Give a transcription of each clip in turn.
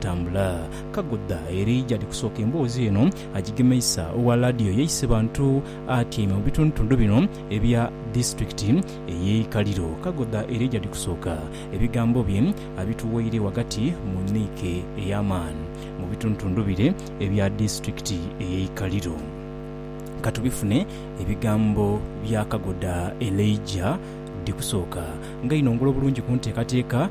Tambula, kagudha eri gyali kusooka emboozi eno agigemeisa. Owa laadiyo yeise bantu atyaime mu bitundutundu bino ebya disitulikiti ey'e Ikaliro. Kagudha eri gyali kusooka, ebigambo bye abituweire ghagati mu niike ey'amaani mu bitundutundu bire ebya disitulikiti ey'e Ikaliro. Ka tubifune ebigambo bya Kagudha Elijah Dhikusooka nga inongola obulungi ku nteekateeka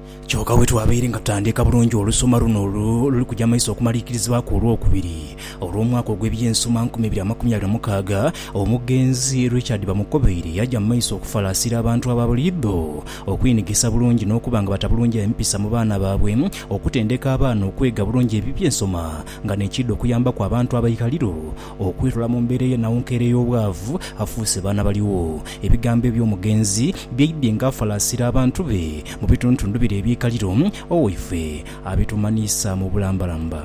Kyoka bwetwabaire nga tutandiika bulungi olusoma luno oluli kuja maiso okumaliikirizibwaku olwokubiri olw'omwaka ogw'eby'ensoma nkumi ibiri amakumi abiri na mukaaga, omugenzi Richard Bamukobeire yaja mu maiso okufalaasira abantu aba buli idho okweinhigisa bulungi n'okuba nga batabulungi empisa mu baana baabwe, okutendeka abaana okwega bulungi eby'ensoma nga n'ekiidha okuyambaku abantu abaikaliro Okwirula mu mbeera ey'enhaunkeera ey'obwavu, afuuse baana baligho. Ebigambo eby'omugenzi byaidhye ng'afalaasira abantu be mu bituntundu bire eby'eikaliro, Owaife abitumanhiisa mu bulambalamba.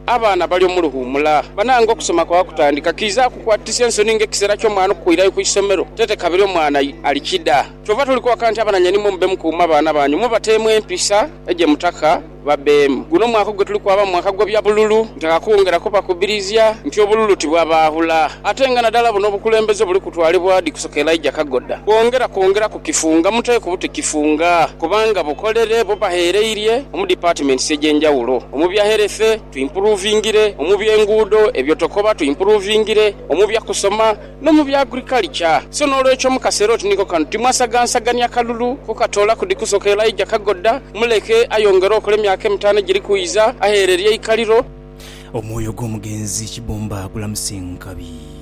Abaana bali omu luwuumula. Banange okusoma kwa kutandika, kiidha kukwatisa ensoni ng'ekiseera ky'omwana okukwirayo ku isomero tete kabiri omwana ali kida. Kyova tuli kwaka nti abananyainimwe mube mukuuma abaana banyu, mubateemu empisa egye mutaka. babeemu. Guno mwaka ogwo tuli kwaba mu mwaka gw'ebya bululu. Ntaka kwongera kubakubirizia nti obululu tibwabaahula ate nga nadala buno obukulembeze obuli kutwalibwa di kusoka Elijah Kagoda bwongera kwongera ku kifunga mute ku buti kifunga kubanga bukolere bubaghereirie omu departments egy'enjawulo omu bya health tuimpuruvingire, omu byenguudo, ebyotokoba tuimpuruvingire, omu bya kusoma, no mu bya agrikalica. So n'olwekyo mu kaseera oti niko kano, timwasagansagania kalulu kukatoolaku di kusoka Elijah kagoda, muleke ayongere okola emyaka emitaano egiri kwidha, agheerere eikaliro. Omwoyo gw'omugenzi Kibumba gulamuse nkabi.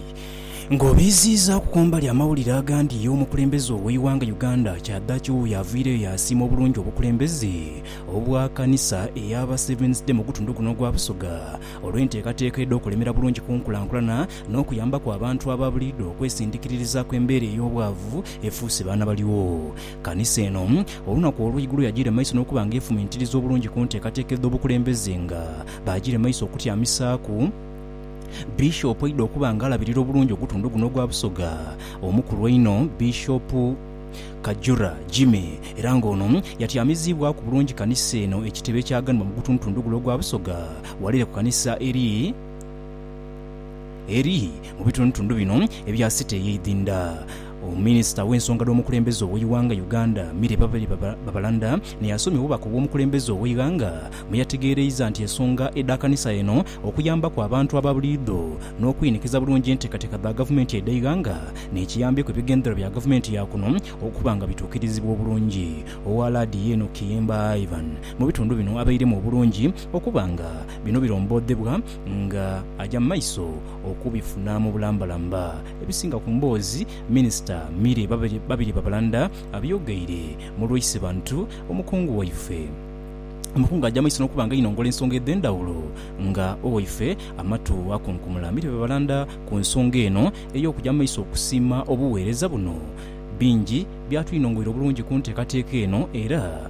Nga obiiziizaaku kumbali amawulire agandi omukulembeze ow'eighanga Uganda kyadaki wuuyo aviireyo yaasiima obulungi obukulembeze obwa kanisa ey'aba Seventh Day mugutundu guno ogwa Busoga olw'enteekateeka edh'okulemera bulungi kunkulankulana n'okuyambaku abantu aba buliidho okwesindikiririzaku embeera ey'obwavu efuuse baana baligho. Kanisa eno, olunaku olw'eigulo yagiire maiso n'okuba nga efumintiriza obulungi ku nteekateeka edh'obukulembeze nga baagiire maiso okutyamisaaku Bishop oidha okuba nga alabirira obulungi ogutundu guno ogwa Busoga omukulu einho Bishop Kajura Jimmy era nga ono yatyamiziibwaku bulungi kanisa eno ekitebe ekyaganibwa mu gutundutundu gule ogwa Busoga Walere ku kanisa eri eri mu bitundutundu bino ebya City ey'eidhindha. Minisita ow'ensonga dh'omukulembeze ow'eighanga Uganda, Milly Babalanda ni asomye obubaka obw'omukulembeze ow'eighanga mwe yategeereiza nti ensonga edha kanisa eno okuyambaku abantu aba buliidho n'okwinikiza bulungi enteekateeka dha gavumenti edh'eighanga n'ekiyambeku ebigendererwa bya gavumenti ya kuno okuba nga bituukirizibwa obulungi. Owa Laadiyo eno Kiyimba Ivan mu bitundu bino abairemu obulungi okuba nga bino birombodhebwa nga aja mu maiso okubifuna mu bulambalamba. Ebisinga ku mboozi Minisita Milly Babirye Babalanda abyogeire mu Lwaise Bantu, omukungu waife Omukungu aja maiso n'okuba nga ainongola ensonga edhendhawulo nga owaife amatu akunkumula Milly Babalanda ku nsonga eno ey'okuja mu maiso okusiima obuweereza buno. Bingi byatwinongoira obulungi ku nteekateeka eno era.